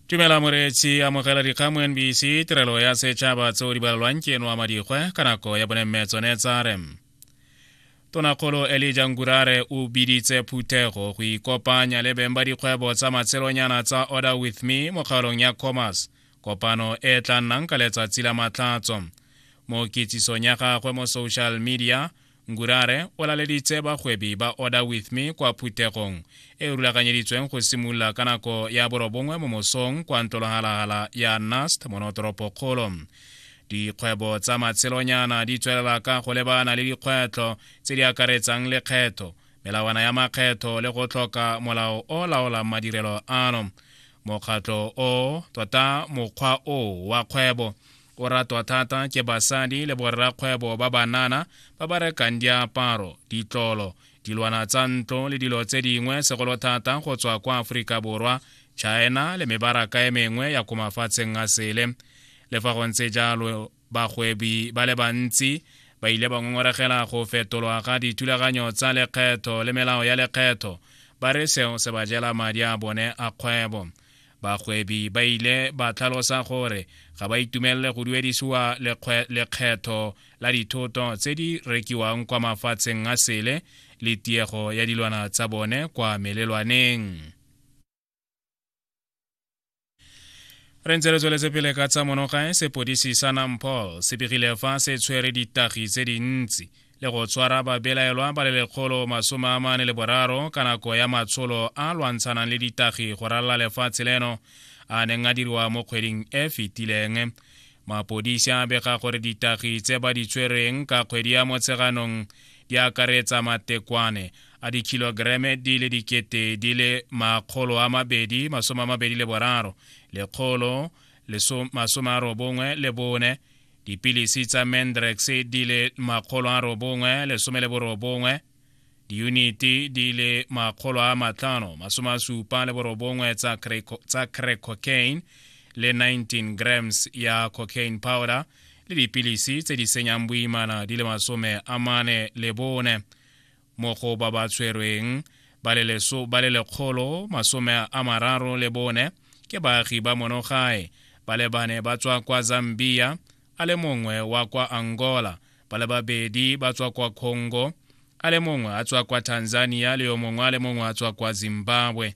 tumela moreetsi amogela dikgang mo nbc tirelo ya setšhaba tseo di balelwang ke eno wa madikgwe ka nako ya bone mme tsone tsa re tonakgolo elija ngurare o biditse phuthego go ikopanya le beng ba dikgwebo tsa matshelonyana tsa order with me mo kgaolong ya commerce kopano e tla nnang ka letsatsi la matlhatso mo kitsisong ya gagwe mo social media ngurare o laleditse bagwebi ba order with me kwa phuthegong e rulaganyeditsweng go simolola ka nako ya borobongwe mo mosong kwa ntlolohalagala ya nast monotoropokgolo dikgwebo tsa matshelonyana di tswelela ka go lebana le dikgwetlho tse di akaretsang lekgetho melawana ya makgetho le go tlhoka molao o laolang madirelo ano mokgatlho o tota mokgwa o wa kgwebo o ratwa thata ke basadi le borrakgwebo ba banana ba ba rekang diaparo ditlolo dilwana tsa ntlo le dilo tse dingwe segolo thata go tswa kwa aforika borwa china le mebaraka e mengwe ya ko mafatsheng a sele le fa go ntse jalo bagwebi ba le bantsi ba ile ba ngongoregela go fetolwa ga dithulaganyo tsa lekgetho le melao ya lekgetho ba re seo se ba jela madi a bone a kgwebo Bagwebi ba ile ba tlhalosa gore ga ba itumelele go duedisiwa lekgetho la dithoto tse di rekiwang kwa mafatsheng a sele le tiego ya dilwana tsa bone kwa melelwaneng. re ntse re tsweletse pele ka tsa monogae sepodisi sa nampol se begile fa se tshwere ditagi tse dintsi le go tshwara babelaelwa ba le lekgolo masome a mane le boraro ka nako ya matsholo a lwantshanang le ditagi go ralala lefatshe leno a neng a diriwa mo kgweding e fetileng mapodisi a bega gore ditagi tse ba di tshwereng ka kgwedi ya motsheganong di akaretsa matekwane a dikhilogereme di le dikete di le makgolo a mabedi masome a mabedi le boraro lekgolo masome a robongwe le bone dipilisi tsa mandrex di le makgolo a robongwe lesome le borobongwe diyuniti di le makgolo a matlhano masome a supa le borobongwe tsa crack cocaine le 19 grams ya cocaine powder le dipilisi tse di senyang boimana di le masome a mane le bone mo go ba ba tshwerweng ba le leso ba le lekgolo masome a mararo le bone ke baagi ba monogae ba le bane ba tswa kwa zambia a le mongwe wa kwa angola ba le babedi ba tswa kwa congo a le mongwe a tswa kwa tanzania le yo mongwe a le mongwe a tswa kwa zimbabwe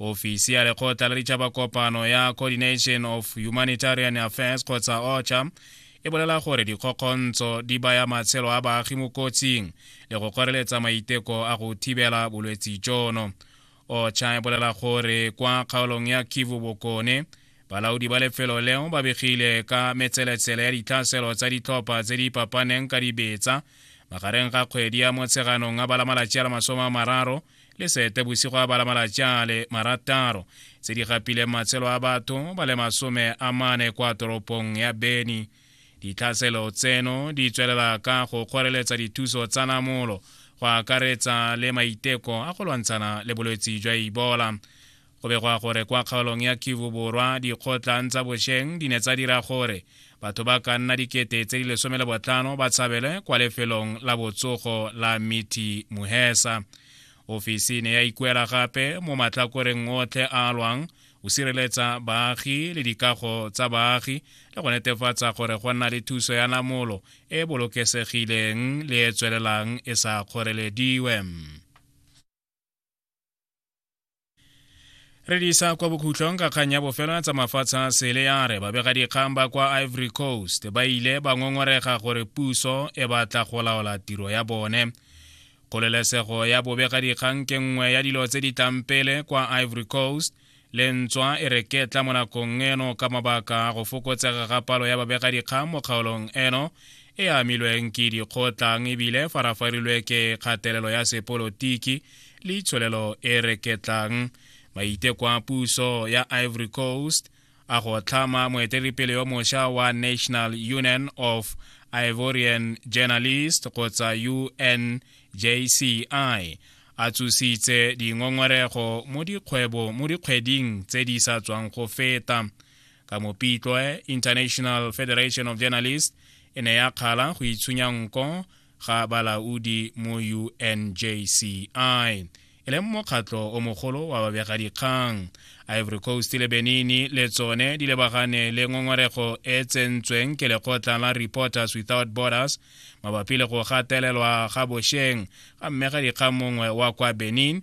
ofisi ya lekgotla la ditšhaba kopano ya coordination of humanitarian affairs kgotsa ocha e bolela gore dikgokgontsho di baya matshelo a baagi mo kotsing le go kgoreletsa maiteko a go thibela bolwetsi jono ocha e bolela gore kwa kgaolong ya kivu bokone balaodi ba lefelo leo ba begile ka metseletsele ya ditlhaselo tsa ditlhopha tse di papaneng ka dibetsa magareng ga kgwedi ya motsheganong a bala malatsi a la masome a mararo le seetebosigo a bala malatsi a le marataro tse di gapileng matshelo a batho ba le masome a mane kwa toropong ya beni ditlhaselo tseno di tswelela ka go kgoreletsa dithuso tsa namolo go akaretsa le maiteko a go lwantshana le bolwetse jwa ibola go begwa gore kwa kgaolong ya kivu borwa dikgotlang tsa bosheng di ne tsa dira gore batho ba ka nna dikete tse di lesome le botlhano ba tshabele kwa lefelong la botsogo la miti muhesa ofisi ne ya ikuela gape mo matlhakoreng otlhe a lwang o sireletsa baagi le dikago tsa baagi le go netefatsa gore go nna le thuso ya namolo e bolokesegileng le e tswelelang e sa kgorelediwe re di isa kwa bokhutlong ka kgang ya bofelo tsa mafatshe a sele ya re babegadikgang ba kwa ivory coast ba ile ba ngongorega gore puso e batla go laola tiro ya bone kgololesego ya bobegadikgang ke nngwe ya dilo tse di tlang pele kwa ivory coast lentswa e re ketla mo nakong eno ka mabaka a go fokotsega ga palo ya babegadikgang mo kgaolong eno e amilweng ke dikgotlang ebile farafarilwe ke kgatelelo ya sepolotiki le itsholelo e reketlang maiteko a puso ya ivory coast a go tlhama moeteledipele yo mosha wa national union of ivorian journalist kgotsa unjci a tsositse dingongorego mo dikgwebo mo dikgweding tse di sa tswang go feta ka mopitloe international federation of journalists e ne ya kgala go itshunya nko ga balaodi mo unjci e leng mokgatlo o mogolo wa babegadikgang ivory coast le benini le tsone di lebagane le ngongorego e tsentsweng ke lekgotla la reporters without borders mabapi le go gatelelwa ga bošeng ga mmegadikgang mongwe wa kwa benin